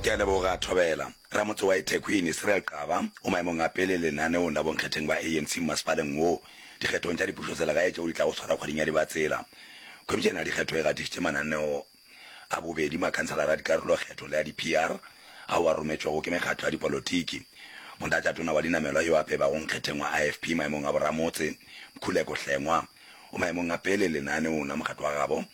Ke a leboga Thobela. Ramotse wa eThekwini, Cyril Xaba, o maemong a pele lenaneong la bonkgetheng ba ANC mmasepaleng wo dikgethong tša dipušoselegae tšeo di tlago swarwa kgweding ya Dibatsela. Khomišene ya dikgetho e gatišitše mananeo a bobedi makhanselara a dikarolokgetho le a di-PR ao a rometšwego ke mekgatlo ya dipolotiki. Motlatšatona wa dinamelwa yo a pebago nkgetheng wa IFP maemong a boramotse, Mkhuleko Hlengwa, o maemong a pele lenaneong la mokgatlo wa gabo.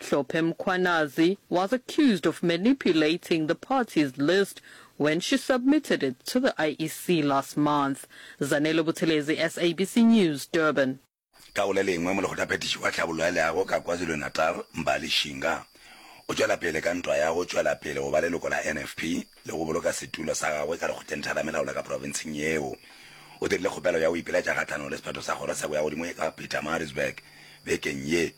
Hlophe Mkhwanazi was accused of manipulating the party's list when she submitted it to the IEC last month. Zanele Buthelezi, SABC News, Durban. Ka go le lengwe, molekgothaphethiši wa tlhabollo ya leago ka KwaZulu-Natal, Mbali Shinga, o tšwela pele ka ntwa ya go tšwela pele go ba leloko la NFP le go boloka setulo sa gagwe ka lekgotlentha la melaola ka profenseng yeo. O dirile kgopelo ya go ipiletša kgahlanong le sephetho sa kgoro sa boyagodimo ka Pietermaritzburg bekeng ye.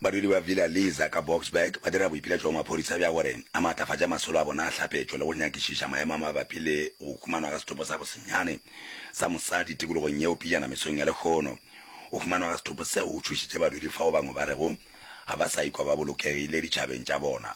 Badudi ba Villa Lisa ka Boksburg ba dira boipelaetšo go maphorisa bja gore a maatlafatše masolo a bona a hlapetšo le go nyakišiša maemo a mabapi le go humanwa ga sethopo sa bosenyane sa mosadi tikologong yeo pejana mesong ya lehono. Go humanwa ga sethopo seo go tšhošitše badudi fao bangwe ba rego ga ba sa ikwa ba bolokegile ditšhabeng tša bona.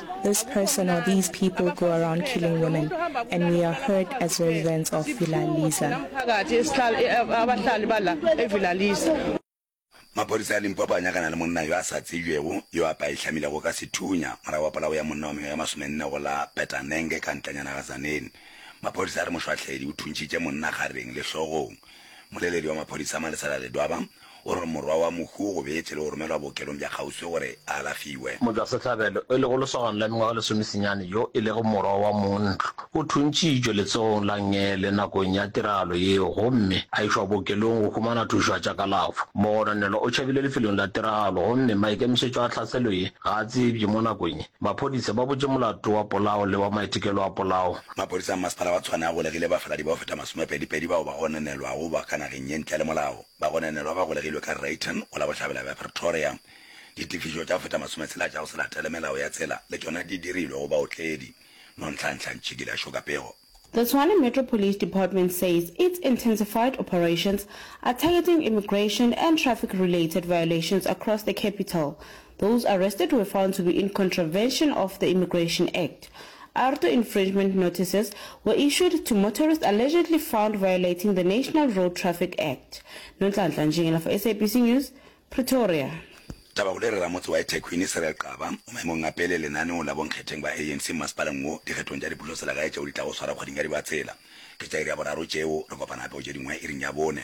This person or these people go around killing women and we are hurt as residents of Villa Lisa. Maphodisa a Limpopo a nyakana le monna yo a sa tsebjego yo a paehlamilego ka sethunya morago ga polao ya monna wa mengwaga ya masomenne go la Petanenge ka ntlanyana ga Zaneni. Maphodisa a re mošwahledi o thuntšitše monna gareng le hlogong. Moleledi wa maphodisa Malesela Ledwaba O re morwa wa Mohu o gobetše le go romelwa bookelong bja kgauswi gore a alafiwe. Motšwasehlabelo, e lego lesogana la mengwaga e lesomesenyane yo e lego morwa wa montlo, o thuntšitšwe letsogong la Ngele nakong ya tiragalo yeo gomme a išwa bookelong go humana thušo ya tša kalafo. Mogononelwa o tšhabile lefelong la tiragalo gomme maikemišetšo a tlhaselo ye ga a tsebje mo nakong ye. Maphodisa ba butše molato wa polao le wa maitekelo a polao. Maphodisa a Mmasepala wa Tshwane a golegile bafaladi ba go feta masomepedipedi bao ba gononelwago ba ka nageng ye ntle le molao. Bagononelwa ba golegilwe ka Rayton go la bohlabela bja Pretoria. Ditefišo tša go feta masome tshela tša go se latele melao ya tsela le tšona di dirilwe go baotledi, Nonhlanhla Ntšhikile a šoka pego. The Tshwane Metro Police Department says its intensified operations are targeting immigration and traffic-related violations across the capital, Those arrested were found to be in contravention of the Immigration Act. Arto infringement notices were issued to motorists allegedly found violating the National Road Traffic Act. Nonhlanhla Ntšhingela for SABC News, Pretoria. Taba go lere ramotse wa eThekwini, Cyril Xaba, o maemong a pele lenaneong la bonkgetheng ba ANC mmasepaleng wo dikgethong tša dipušoselegae tšeo di tlago swarwa kgweding ya Dibatsela. Ke tša iri ya boraro tšeo, re kopana gape go tše dingwe iring ya bone.